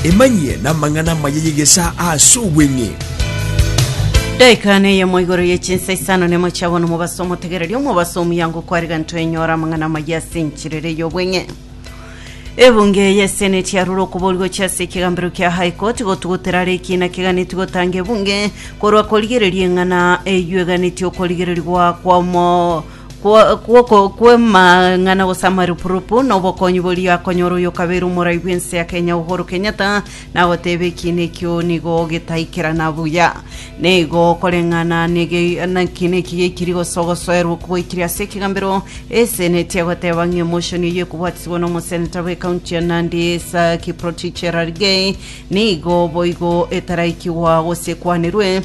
Emanyie namang'ana amaya y'egesaa ase obweng'e. Daika neyemo igoro ye chinsa isano nemo chiabo nomobaso omotegereri omobaso omuyango kwarega ntwenyora amang'ana amaya ase enchirere y'obweng'e ebunge yeseneti yarure okobori gochia ase ekegambero kia high court gotugutera are ekina keganeti gotanga ebunge korwa korigereria eng'ana eywo eganeti okorigererigwa kwamo Kwo- kw'oko- kw'emang'ana gose amarupurupu na obokonyi boria akonyora oyo okabeire omorai bw'ense ya Kenya Uhuru Kenyatta nagoteeba ekiina ekio nigo getaikerana buya. Nigo okoreng'ana nege nekiina eki geikiri gose ogosoerwa okwo gwaikire ase ekegambero eseneti egoteeba ng'a emotion eyio ekobwatisibwa na omoseneta bw'ekaunti ya Nandi Sir Kiprotich Cherargei nigo boigo etaraikigwa gose ekwanirwe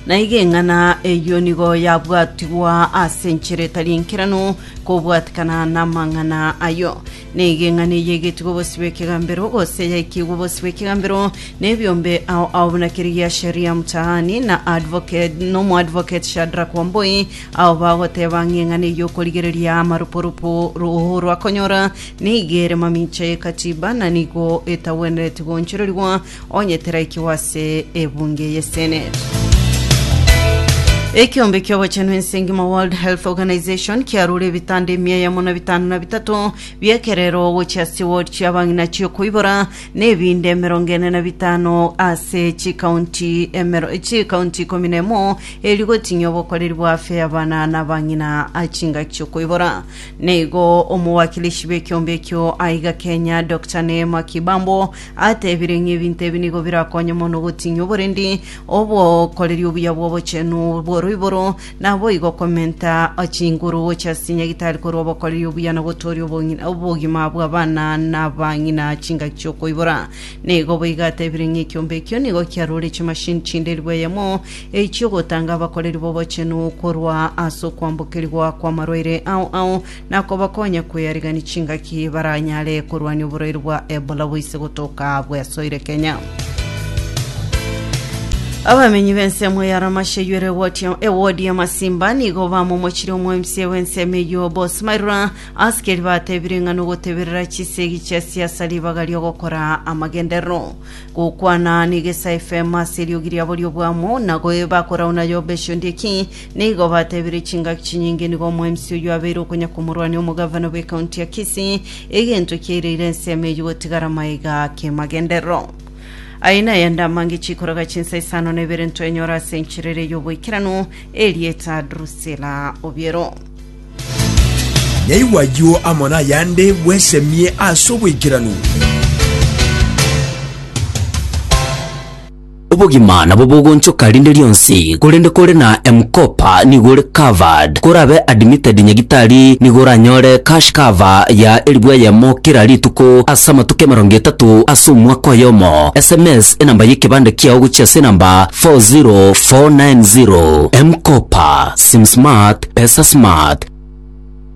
Naiga eng'ana eyio nigo yabwatigwa ase enchera etari enkeranu kobwatikana namang'ana ayio. Naiga eng'ana eyio yaigetigwe obosio bw'ekegambero, gose yaikigwe obosio bw'ekegambero nebiombe ao ao buna kerigia Sheria Mtaani na advocate nomoadvocate Shadrack Wambui ao bagoteba ng'a eng'ana eyio okorigereria amarupurupu roo rwakonyora neiga ere mamicha ye Katiba na nigo etagwenereti goonchorerigwa Onye teraikigwa ase ebunge ye Senate. Ekeombe ki'obochenu ense engima World Health Organization kiarure ebitanda emia eyemo na bitano na bitato bi'ekerero gochia ase ward chi'abang'ina chi'okoibora na ebinde emerongo ene na bitano ase chikaunti emero chikaunti ikomi na emo eri goting'ia obokoreri bwa afya y'abana na abang'ina a chingaki chi'okoibora. Neigo omowakilishi bw'ekeombe ekio aiga Kenya Dr. Neema Kibambo Atebire ng'a ebinto ebi nigo birakonye mono gotinyia oborendi, obokoreri obuya bw'obochenu bw'oroiboro, naboigo komenta chinguru gochia ase chinyagitari korwa obokoreri obuya na gotooria obong'ina obogima bw'abana na abang'ina chingaki chi'okoibora. Nigo boigo atebire ng'a ekiombe ekio nigo kiarore chimashini chinde elfu eyemo chi'ogotanga abakoreri b'obochenu korwa ase okwambokerigwa kw'amarwaire ao ao na kobakonya kweyarigania chingaki baranyare korwania oborwaire bwa Ebola boise gotoka bwesoire Kenya. Abamenyi b'ensemo ya Ramashe ywere ewodi ya Masimba nigo bamomochire omwemsie w'ensemo eyio Boss Mairura asikeri batebire ng'a nogoteberera chisegi chia siasa ribaga ri'ogokora amagenderero gokwana n'Egesa FM ase eriogi riabo ri'obwamo na goeba korauna yobe esio ndieki Nigo batebirie chingaki chinyinge nigo omwemsi oyio abeire okonya komorwania omogavana bw'ecounty ya Kisii, egento ekiaireire ensemo eyio gotigara maega kemagenderero. Aya nayande amange chikoraga chinsa isano na ibere ntwenyora ase enchera eria y'oboikeranu, erieta Drusilla Obiero. Nyaigwa ayio amo nayande bwesemie ase oboikeranu. Obogima nabo bogonchoka rinde rionsi, korende kore na M-Kopa nigo ore covered. Korabe admitted nyagitari nigo oranyore cash cover ya elifu eyemo kera rituko ase amatuko emerongo etato ase omwaka oyomo. Sms enamba y'ekebande kiao gochia ase enamba 40490. M-Kopa, Sim Smart, Pesa Smart.